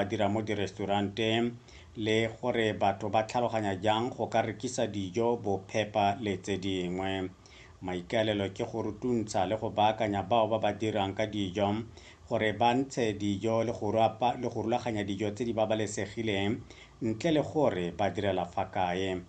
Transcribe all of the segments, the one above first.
ba dira mo diresturanteng le gore batho ba tlhaloganya jang go ka rekisa dijo, bophepa le tse dingwe. Maikaelelo ke go rutuntsha le go baakanya bao ba ba dirang ka dijo gore ba ntshe dijo le go rapa le go rulaganya dijo tse di babalesegileng ntle le gore ba direla fa kae.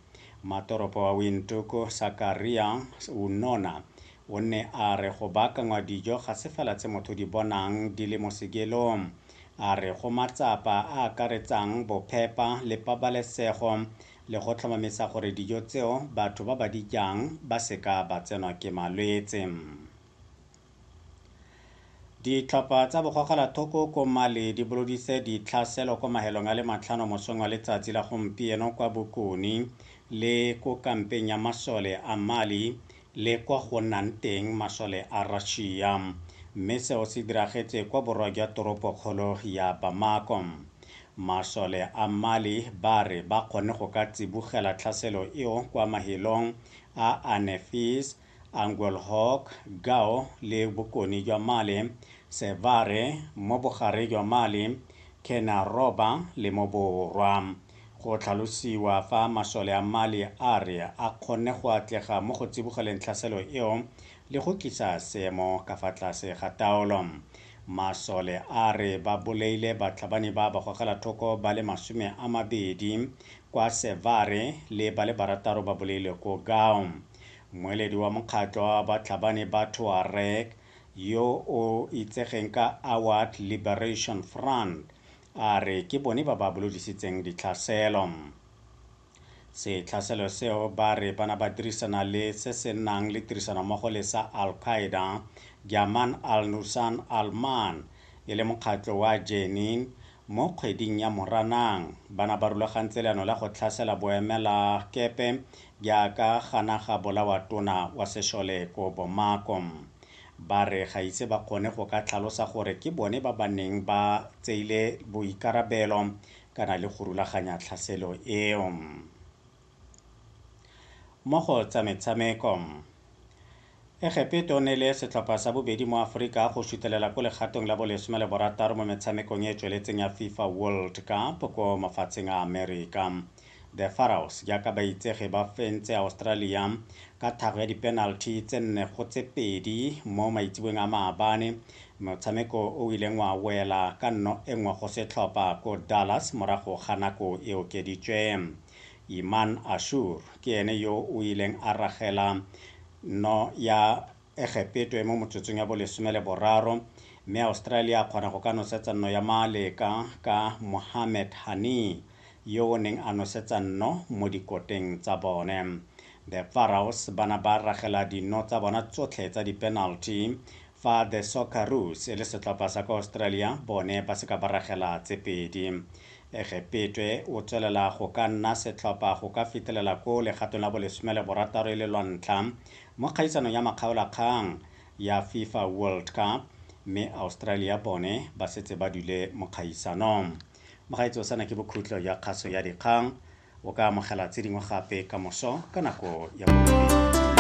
Mmatoropo wa Windhoek, Sakaria Unona, o ne a re go baakangwa dijo ga se fela tse motho di bonang di le mo sekelong. a re go matsapa a akaretsang bophepa le pabalesego le go tlhomamisa gore dijo tseo batho ba ba di jang ba seka ba tsenwa ke malwetse. Ditlhopha tsa bogogelathoko ko Mali di boloditse ditlhaselo kwa mahelong a le matlhano mosong wa letsatsi la gompieno kwa bokone le ko kampeng ya masole a Mali le kwa go nnang teng masole a Russia, mme seo se diragetse kwa borwa jwa toropokgolo ya Bamako. Masole a Mali ba re ba kgonne go ka tsibogela tlhaselo eo kwa mahelong a Anefis, Anguelhoc, Gao le bokone jwa Mali, Sevare, mo bogareng jwa Mali, Kena Roba le mo borwa. Go tlhalosiwa fa masole a Mali a re a kgonne go atlega mo go tsibogeleng tlhaselo eo le go tlisa seemo ka fa tlase ga taolo. Masole a re ba bolaile batlhabani ba bagogelathoko ba le masome a mabedi kwa Sevare le ba le barataro ba bolailwe ko Gao. Mmueledi wa mokgatlho wa batlhabani ba Tuareg yo o itsegeng ka Awad Liberation Front A re ke bone ba ba bolodisitseng ditlhaselo. Setlhaselo seo ba re ba na ba dirisana le se se nang le tirisanommogo le sa Al Qaeda, Jaman al Nusan al Man, e le mokgatlho wa Jenin, mo kgweding ya Moranang ba na ba rulagantse leano la go tlhasela boemelakepe jwa ka ga naga bolawa tona wa sešole ko Bomako. Ba re ga ise ba kgone go ka tlhalosa gore ke bone ba ba neng ba tseile boikarabelo kana le go rulaganya tlhaselo eo. Mo go tsa metshameko. Egepeto ne le setlhopha sa bobedi mo Aforika go sutelela ko legatong la bolesome le borataro mo metshamekong e e tsweletseng ya FIFA World Cup ko mafatsheng a Amerika. The Pharaohs jaaka ba itsege ba fentse Australia ka thago ya dipenalty tse nne go tse pedi mo maitseboeng a maabane, motshameko o o ileng wa wela ka nno e nngwe go setlhopha ko Dallas morago ga nako e okeditswe. Iman Ashour ke ene yo o ileng a ragela nno ya Egepetwe mo motsotsong ya bolesome le boraro, mme Australia a kgona go ka nosetsa nno ya Maaleka ka Mohamed Hani yo o neng a nosetsa nno mo dikoteng tsa bone. The Pharaohs ba na ba ragela dinno tsa bona tsotlhe tsa dipenalty fa The Socceroos e le setlhopha sa kwa Australia bone ba se ka ba ragela tse pedi. Egepetwe o tswelela go ka nna setlhopha go ka fetelela ko legatong la bolesome le borataro e le lwa ntlha Mo kgaisano ya makgaolakgang ya Fifa World Cup mme Australia bone ba setse ba dule mo kgaisanong. Mogaetsho sena ke bokhutlo ya kgaso ya dikgang. O ka amogela tse dingwe gape kamoso ka nako ya borobedi.